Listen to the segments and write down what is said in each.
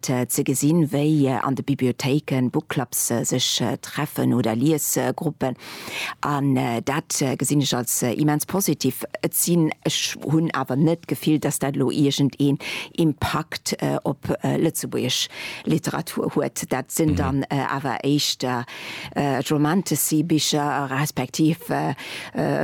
Ze gesinn, wéi an de Bibliothéiken Bookclubs sech treffen oder Liesgruppen, an dat gesinn ech als immens positiv. Et sinn, ech hunn awer net d'Gefill, dass dat elo iergendeen Impakt op lëtzebuergesch Literatur huet. Dat sinn dann awer éischter Romantasy-Bicher, respektiv,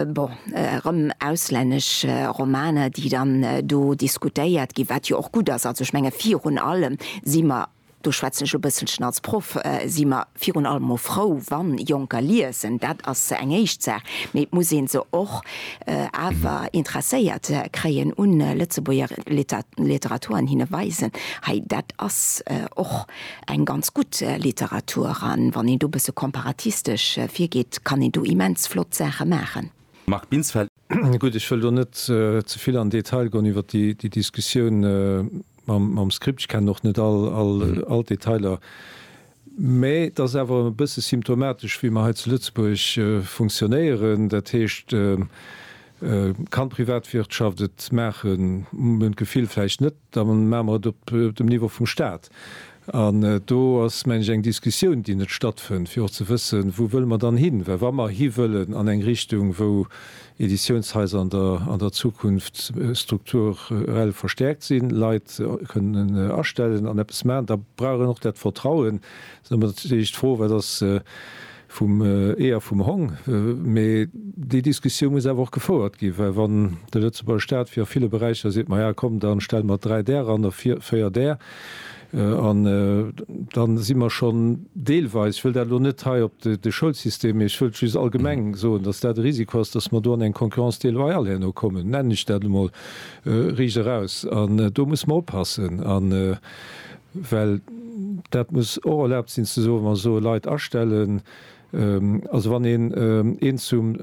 bon, erëm auslännesch Romaner, déi dann do diskutéiert ginn, wat jo och gutt ass. Also ech menge virun allem si mer, do schwätzen ech e bësselchen als Proff, si mer virun allem emol frou, wa Jonker liesen, dat ass eng éischt Saach, mee et muss ee se och awer interesséiert kréien un Lëtzebuerger Literatur an hinne weisen, hei dat ass och Eng ganz gutt Literatur, an wann een do bësse komparatistesch virgeet, kann een do immens flott Saache maachen. Marc Binsfeld. Gutt, ech wëll do net ze vill an Detail goen iwwer déi Diskussioun mam Script. Ech kennen och net all d'Detailer, mä et ass awer e bësse symptomatesch, wéi mer hei zu Lëtzebuerg funktionéieren. Dat heescht, kann d'Privatwirtschaft et maachen? Mir hunn d'Gefill, vläicht net. da maache mer et op dem Niveau vum Stat. An do ass, mengen ech, eng Diskussioun, déi net stattfënnt, fir och ze wëssen, wou wëlle mer dann hin. Well wa mer hi wëllen an eng Richtung, wou Editiounshaiser an der Zukunft strukturell verstärkt sinn, Leit kënnen astellen an eppes maachen, da brauch een och dat Vertrauen. Dann ass mat Sécherheet d'Fro, wat ass, Vum Ee a vum Hong. Mee déi Diskussioun muss awer och gefouert ginn, well wann de Lëtzebuerger Staat fir a ville Beräicher seet, maja komm, da stelle mer dräi där eran a véier där, da si mer schonn deelweis, ech wëll dat elo net hei op de Schoulsystem, mee ech wëllt just allgemeng soen, datt dat e Risiko ass, datt mer do an eng Concurrence déloyale herno kommen, nennen ech dat emol riicht eraus. An do muss mer oppassen. Well dat muss och erlaabt sinn ze soen, wa soe Leit astellen, also wann een een zum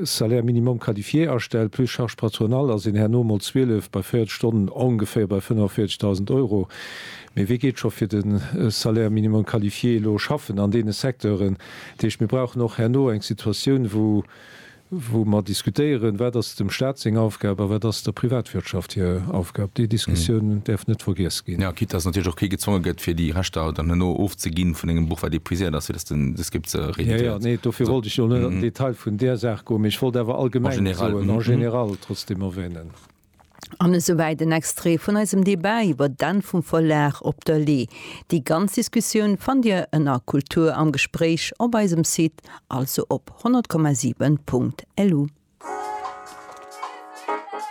Salaire minimum qualifié astellt plus charges patronales, ass een herno mol 12 bei 40 Stonnen ongeféier bei 45.000 Euro. Mee wee geet scho fir de Salaire minimum qualifié elo schaffen an deene Secteuren? Dat heescht, mir brauchen och herno eng Situatioun, wou wou mer diskutéieren, wat ass dem Stat seng Aufgab a wat ass der Privatwirtschaft hir Aufgab. Déi Diskussioun däerf net vergiess ginn. Quitte dass natierlech och kee gezwonge gëtt, fir déi Rechter dann herno ofzeginn vun engem Buch, wat épuiséiert ass, fir dass den de Script se rééditéiert. Jo, jo, nee, dofir wollt ech jo net an den Detail vun där Saach goen, mee ech wollt awer allgemeng soen, en général, trotzdem erwähnen. An esouwäit en Extrait vun eisem Debat iwwer d'Enn vum Verlag op der Lee. Déi ganz Diskussioun fannt Dir ënner Kultur am Gespréich op eisem Site, also op 100,7.lu.